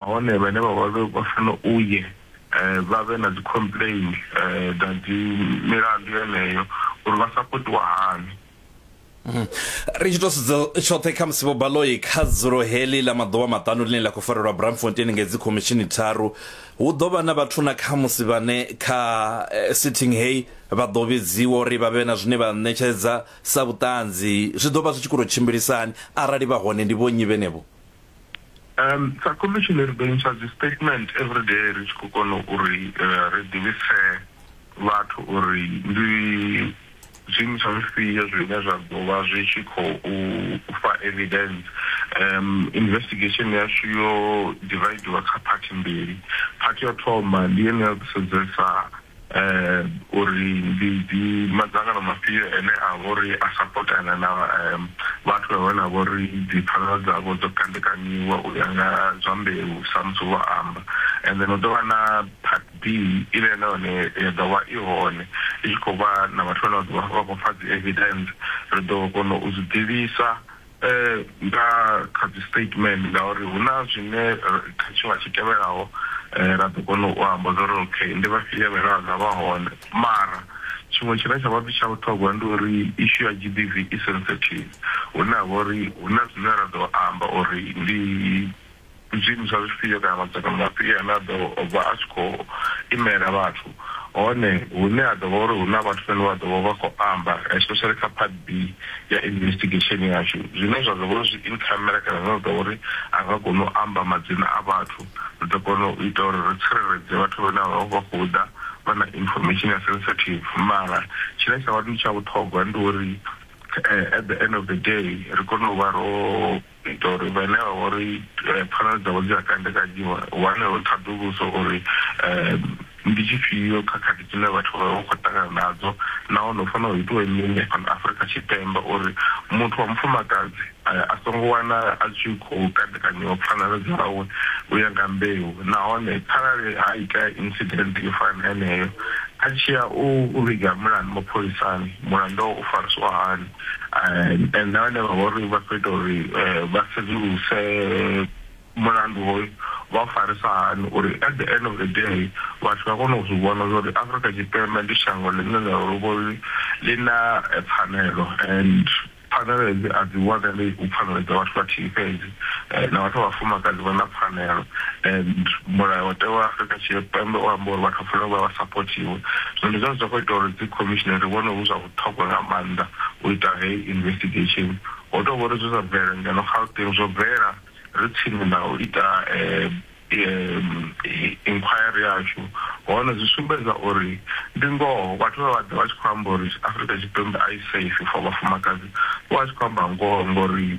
Nahone vhane vha vha vha funa u ye vha vhe na dzi complain dza dzi milandu yeneyo uri vha sapotiwa hani. Ri tshi tou sedza tshoṱhe khamusi Vho Baloyi kha dzulo heḽi ḽa maḓuvha maṱanu ḽine ḽa khou farelwa Braamfontein ngei dzi khomishini tharu hu ḓo vha na vhathu na khamusi vhane kha sitting heyi vha ḓo vhidziwa uri vha vhe na zwine vha ṋetshedza sa vhuṱanzi zwi ḓo vha zwi tshi khou tou tshimbilisa hani arali vha hone ndi vhonnyi vhenevho. Um, sa commission ri ḓo ntsha dzi statement every day ri tshi khou kona uri uh, ri ḓivhise vhathu uri ndi zwiimiswa zwifhio zwine zwa ḓo vha zwi tshi khou fa evidence um investigation yashu yo dividiwa kha phathi mbili phathi yo thoma ndi yene ya ḓisedzesa uri ndi ndi madzangano mafhio ane a vha uri a sapotana na vhathu vha vhane vha vha uri dzi pfanelo dzavho dzo kandekanyiwa u ya nga zwa mbeu samusi vho amba. And then hu ḓo vha na part B ine na yone ya ḓo vha i hone i tshi khou vha na vhathu vhane vha ḓo vha vha khou fha dzi evidence ri ḓo kona u zwi ḓivhisa. E nga kha dzi statement ngauri hu na zwine kha tshiṅwe tshi tevhelaho ra ḓo kona u amba zwa uri okay ndi vhafhio vhane vha nga vha hone. Mara tshiṅwe tshine tsha vha tsha vhuṱhogwa ndi uri issue ya G_B_V i sensitive hune ha vha uri hu na zwine ra ḓo amba uri ndi zwiimo zwa zwifhio kana madzangano mafhio ane a ḓo vha a tshi khou imela vhathu, hone hune ha ḓo vha uri hu na vhathu vhane vha ḓo vha vha khou amba, especially kha part B ya investigation yashu, zwine zwa ḓo vha uri zwi in camera kana zwine zwa ḓo vha uri a nga koni u amba madzina a vhathu, ri ḓo kona u ita uri ri tsireledze vhathu vhane vha vha khou ḓa vha na information ya sensitive. Mara tshine tsha vha ndi tsha vhuṱhogwa ndi uri at the end of the day ri kone u vha ro U itela uri vhane vha vha uri pfanelo dzavho dzi a kandekanyiwa hu wanale ṱhaḓuluso uri ndi tshifhio khakhathi dzine vhathu vha vha vha khou ṱangana nadzo nahone hu fanela hu itiwe mini fhano Afrika Tshipembe uri muthu wa mufumakadzi a songo wana a tshi khou kandekanyiwa pfanelo dzawe u ya nga mbeu nahone kharali ha itea incident yo fana na yeneyo a tshi ya u vhiga mulandu mapholisani mulandu wawe u fariswa hani. eh, na vhane vha vha uri vha khou ita uri eh, vha sedzuluse mulandu hoyu vha u farisa hani uri at the end of the day vhathu vha kone u zwi vhona zwa uri afrika tshipembe ndi shango ḽine ḽa luvho ḽi na eh, pfanelo and pfanelo hedzi a dzi wanali u pfanelo dza vhathu vhathihi fhedzi eh, na vhathu vhafumakadzi vha na pfanelo and mulayo watewa wa afrika tshipembe u amba uri vhathu vha fanela u vha vha sapothiwe zwino ndi zwone zwa khou ita uri dzi commissionary vhone hu zwa ṱhogwa nga maanḓa u ita heyi investigesheni. Ho tou vha uri zwe zwa bvelela ngeno Gauteng zwo bvelela ri tsini na u ita inquiry yashu hone zwi sumbedza uri ndi ngoho vhathu vhe vha ḓa vha tshi khou amba uri Afrika Tshipembe a i safe for vhafumakadzi vho vha tshi khou amba ngoho ngori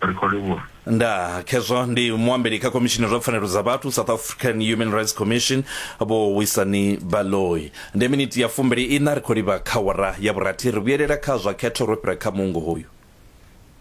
Ri khou livhuwa. Ndaa, khezwo ndi muambeli kha khomishini zwa pfanelo dza vhathu South African Human Rights Commission vho Wisani Baloyi. Ndi miniti ya fumbili ina ri khou livha kha wara ya vhurathi ri vhuyelela kha zwa khetho ro fhira kha muungo hoyu.